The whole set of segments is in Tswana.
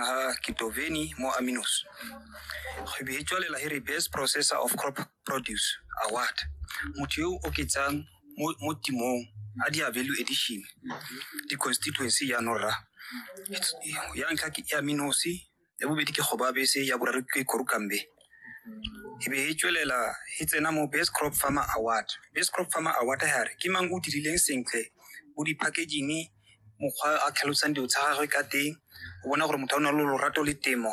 ha Kitoveni mo Aminos. Go beetswalela he re Best Processor of Crop Produce Award. Motho yo o oketsang mo mo timong a di value addition di constituency ya Norra. It's- Ya ntlha ke ya Minosi, ya bobedi ke Gobabese, ya boraro ke Korukambe. E be e tswelela e tsena mo Best Crop Farmer Award. Best Crop Farmer Award ha re ke mang o dirileng sentle mo di-packaging mokgwa a tlhalosang dilo tsa gagwe ka teng o bona gore motho a na le lorato le temo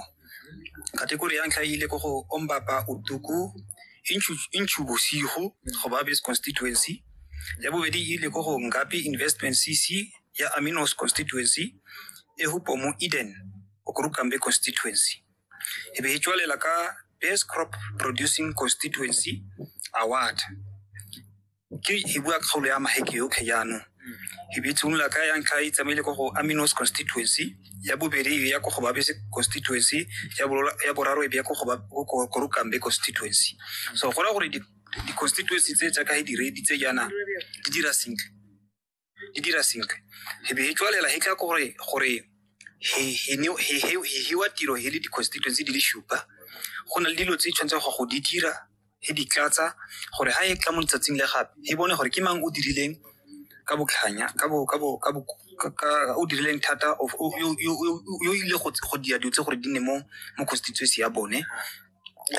kategori ya ntlha e ile ko go ombapa utuku inchu bosigo go ba base constituency ya bobedi e ile ko go ngapi investment cc ya aminos constituency e hupo mo eden okurukambe constituency e be e tswalela ka base crop producing constituency award ke e bua kgaolo ya maheke yotlhe jaanong e bitshimolola ka ya ntlha e tsamaile ko go aminos constituency ya bobedi e ya ko go babese constituency ya bolo- ya boraro e bya ko go ba- ko- ko- korukambe constituency so gona gore di- di-constituency tse jaaka e diredi tse jaana di dira sentle di dira sentle he be he tswalela he tla gore gore he he ne- he he he hiwa tiro he le di-constituency di le supa go na le dilo tse di tshwanetseng go go di dira he di tlatsa gore ha e tla mo letsatsing le gape he bone gore ke mang o dirileng ka botlhanya ka bo ka bo ka bo ka- ka- o dirileng thata o- o- yo- yo- yo- yo ile go go dira dilo tse gore di nne mo mo constituency ya bone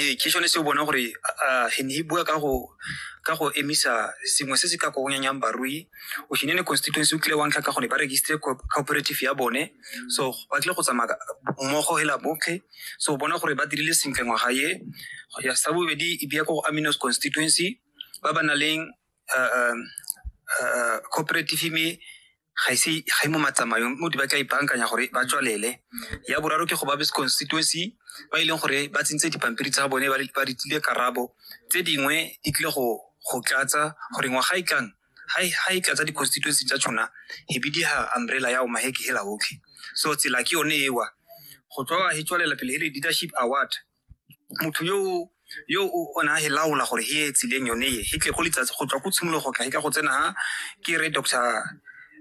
ee ke sone se o bona gore ah, he ne he bua ka go ka go emisa sengwe se se ka kogonyanyang barui o shine ne constituency o tlile wa ntlha ka gone ba registre co- cooperative ya bone so ba tlile go tsamaya ka- mmogo hela botlhe so o bona gore ba dirile sentle ngwaga ye ya sa bobedi e bia ko go aminos constituency ba ba na leng ah, ah, ah, cooperative me ga e se ga e mo matsamayong mo di ba tla ipankanya gore ba tswalele ya boraro ke go babes constituency ba e leng gore ba tsentse dipampiri tsa bone ba ba ditlile karabo tse dingwe di tlile go go tlatsa gore ngwaga e tlang ha e- ha e tlatsa di-constituency tsa tshona e be di ha umbrella ya omaheke hela otlhe so tsela ke yone ewa go tswa he tswalela pele he re leadership award motho yo o- yo o o ne a e laola gore he e tsileng yone e he tle go letsatsi go tswa ko tshimologo go tla he ka go tsena ha ke re doctor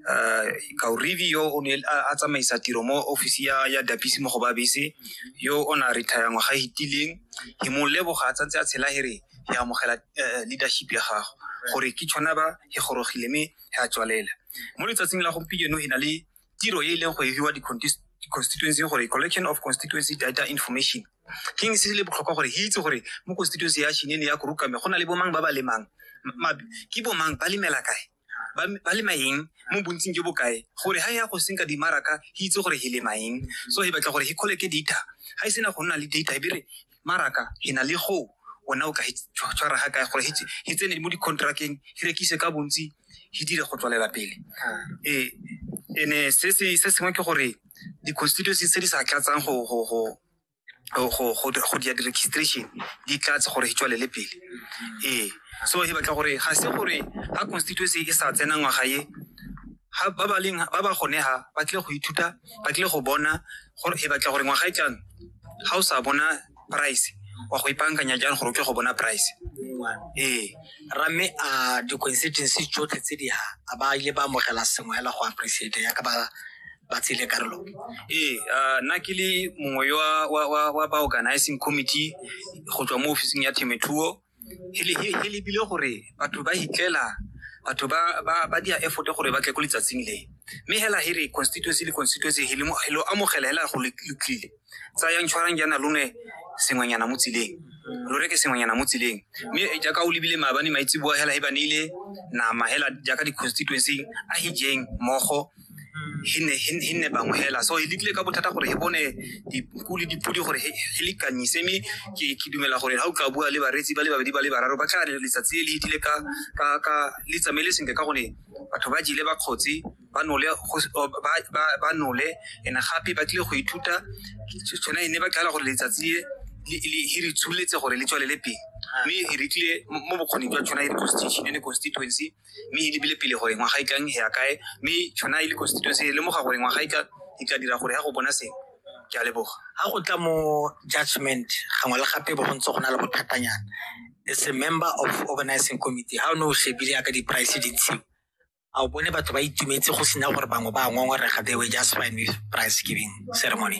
uh, kaurivi yo o ne a a tsamaisa tiro mo office ya ya dapisi mo go ba bese yo o na retire ngwaga e hitileng he mo leboga a tsantse a tshela he re he amogela eh, leadership ya gago gore ke tshwana ba he gorogile mme he a tswalela mo letsatsing la gompieno he na le tiro e e leng go e hiwa di-constituency gore collection of constituency data information ke eng se se le botlhokwa gore e itse gore mo constituency ya shine le ya korukame go na le bomang ba ba lemang Ma- ke bomang ba lemela kae ba ba lema eng mo bontsing jo bokae gore ha ya go senka dimaraka e itse gore e lema eng so e batla gore e kgoleke data ha e sena go nna le data e bere Maraka he na le go ona o ka tshwara ga kae gore he tsene mo di-contracteng he rekise ka bontsi he dire go tswalela pele ee ene se sengwe ke gore di-constituency tse di sa tlatsang go dia di-registration di tlatse gore he tswalele pele ee so he batla gore ga se gore ga constituency e sa tsena ngwaga ye ba ba gone ha ba tlile go ithuta ba tlile go bona gore e batla gore ngwaga e tlang ga o sa bona price wa go ipankanya jang gore o tle go bona price ee ramme a di-constituency tsotlhe tse di ha a ba ile ba amogela sengwe hela go appreciate ya ka ba ba tsile karolo ee ah, nna ke le mongwe wa, wa, wa, wa ba organizing committee go tswa mo officing ya themethuo he lebile gore batho ba hitlela batho ba dia effort gore ba tle ko letsatsing le mme hela he re constituency le constituency he lo amogela hela go le tlile tsayang tshwarang jaana lone sengwenyana mo tseleng lo reke sengwenyana mo tseleng mme eh, jaaka o lebile maabane maitse boa hela he ba neile nama hela jaaka di-constituency a hijeng mogo he nne bangwe hela so e lekile ka bothata gore he bone dinku le dipodi gore he lekanyise mme ke dumela gore ga o ka bua le bareetsi ba le babedi ba le bararo ba tla letsatsi le le itile ka le tsamaele sentle ka gone batho ba jile ba kgotse ba nole and gape ba tlile go ithuta tshwana e ne ba tlala gore letsatsi e e re tsholetse gore le tswalele pele mme e re tlile mo bokgoni jwa tshwana e re constitution e constituency mme e lebile pele gore ngwaga e tlang ya kae mme tshwana e le constituency e lemoga gore ngwaga e ka e ka dira gore ya go bona sengwe ke a leboga ga go tla mo judgment gangwe le gape bo go ntse go na le bothatanyana as a member of organizing committee ga o ne o shebile yaka di-price di ntshiwa a o bone batho ba itumetse go sena gore bangwe ba ngongorega they were just fine with price giving ceremony